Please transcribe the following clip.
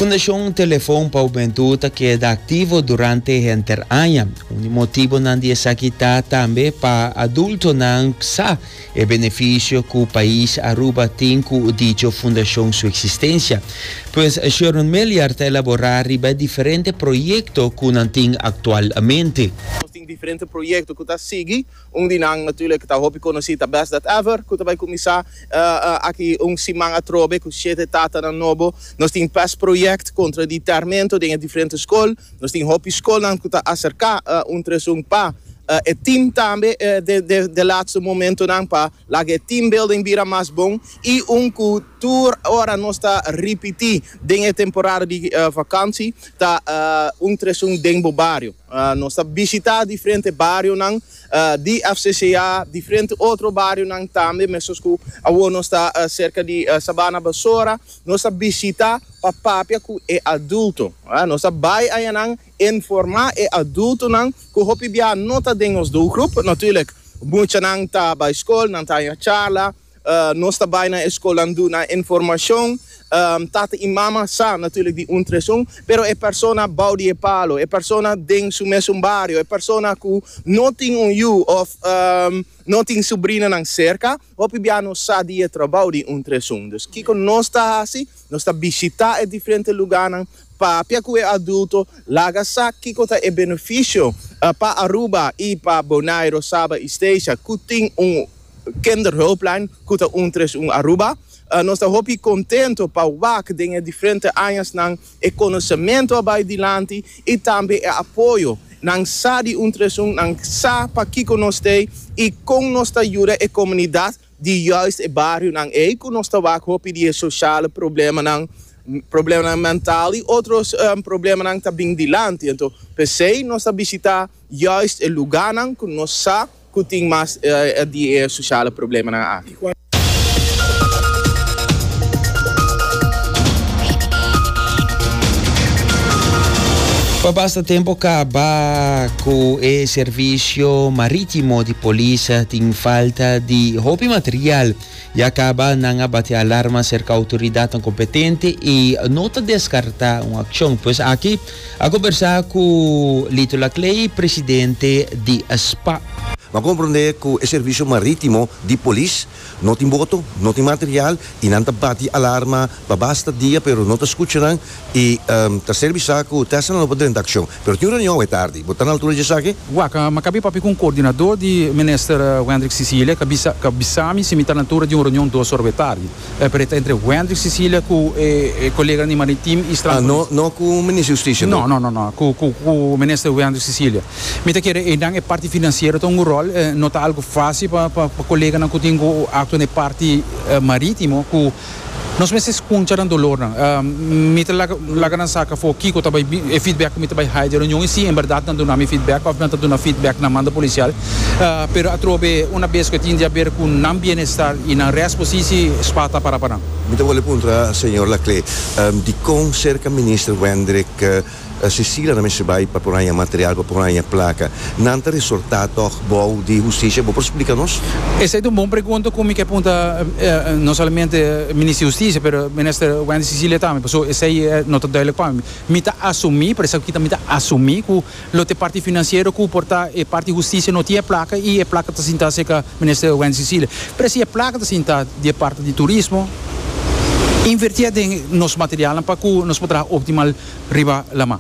Fundashon Telefon pa Hubentu ta keda aktivo durante henter aña. Un di motibonan di esaki ta tambe pa adultonan sa e benefisio ku pais Aruba tin ku dicho fundashon su eksistensia. Pues Sharon Meliar ta elaborá riba e diferente proyekto ku nan tin aktualmente. Nos tin diferente proyekto ku ta sigui. Un di nan natuurlijk ta hopi konosí ta Best Dat Ever ku ta bai kuminsá aki un siman atrobe ku shete tatanan nobo. Nos tin pes proyekt kontra di tèrmento den e diferente skol. Nos tin hopi skolnan ku ta aserká un tres un pa e team tambe den e latste momentonan pa laga e team building bira mas bon i un ku tur ora nos ta ripití den e temporada di vakantie ta un tres un den bo bario. Nos ta bishitá diferente barionan di FCCA, diferente otro barionan tambe, mesun ku awor nos ta serka di Sabana Basora. Nos ta bishitá pa papia ku e adulto. Nos ta bai ayanan informá e adultonan ku hopi biaha no ta den nos doelgroep. Natùrlik, muchanan ta bai skol, nan ta haña charla. Nos ta bai na e skolnan duna informashon. Tata i mama sa natùrlik di un tres un, pero e persona bou di e palo, e persona den su mesun bario, e persona ku no tin un yu òf no tin subrinanan serka, hopi bia no sa di e trabou di un tres un. Dus kiko nos ta hasi? Nos ta bishitá e diferente lugánan, Papia cu e adulto, laga sa kico ta e beneficio pa Aruba y pa Bonaire, Saba y Statia cu tin un Kinderhulplijn cu ta un tres un Aruba. Nos ta hopi contento pa wak den e diferente añasnan e conocemento a bay dilanti y tambe e apoyo. Nan sa di un tres un, nan sa pa kico nos t'ey y con nos ta yuda e comunidad. di juist e barionan ei ku nos ta wak hopi di e shoshalnan problemanan, problemanan mental i otro problemanan ta bin dilanti. Anto p'esei nos ta bishitá juist e lugánan ku nos sa ku tin mas di e shoshalnan problemanan aki. Pa basta tempu kabá. Ku e servisio marítimo di polis tin falta di hopi material, ya kaba nan a bati alarma serka outoridatnan kompetente i no ta deskartá un akshon. Pues aki a kombersá ku Lito Laclay, presidente di SPAP. Bo a komprondé ku e servisio marítimo di polis. No tin boto, no tin material y nan ta bati alarma pa basta dia pero no ta scucha nan y ta ser bisa cu Tesla no por drenta accion. Pero tin un reunion awe tardi. Bo ta na altura dje esaki? Wak, Mi cabia papia cu un coordinador di Minister Wendrick Cecilia ca bisa ca bisami si mi ta na altura di un reunion dos ora awe tardi. E peret ta entre Wendrick Cecilia cu e coleganan di Maritiem y Strandfontein. No cu Minister Justicia? No, no, no, no cu cu cu Minister Wendrick Cecilia. Mi ta kere einan e parti financiero ta un go rol, no ta algo fácil pa pa pa coleganan cu tin go actua na e parti marítimo cu nos mester scunsha nan dolornan. Mi ta laga laga nan saca afo kico ta bay e feedback cu mi ta bay haya di e reunion y si en berdad nan duna mi feedback of nan ta duna feedback na mando policial. Pero atrobe una bes cu e tin di haber cu nan bienestar y nan rest posici spa ta para pa nan. Mi ta wòl e puntra señor Laclé dicon cerca Minister Wendrick Cecilia ta mester bai pa por haña material pa por haña placa. Nan ta resorta tog bou di Husticia. Bo por splica nos? Esey ta un bon pregunta cu mi ke punta no solamente Minister di Husticia pero Minister Wendy Cecilia tambe paso esey no ta duidelijk pa mi. Mi ta asumi, por esaki mi ta asumi cu lo te parti financiero cu por ta e parti di Husticia no tin e placa y e placa ta sinta cerca Minister Wendy Cecilia. Pero si e placa ta sinta di e parti di Turismo. Invertié den nos materialnan pa ku nos por traha optimal riba laman.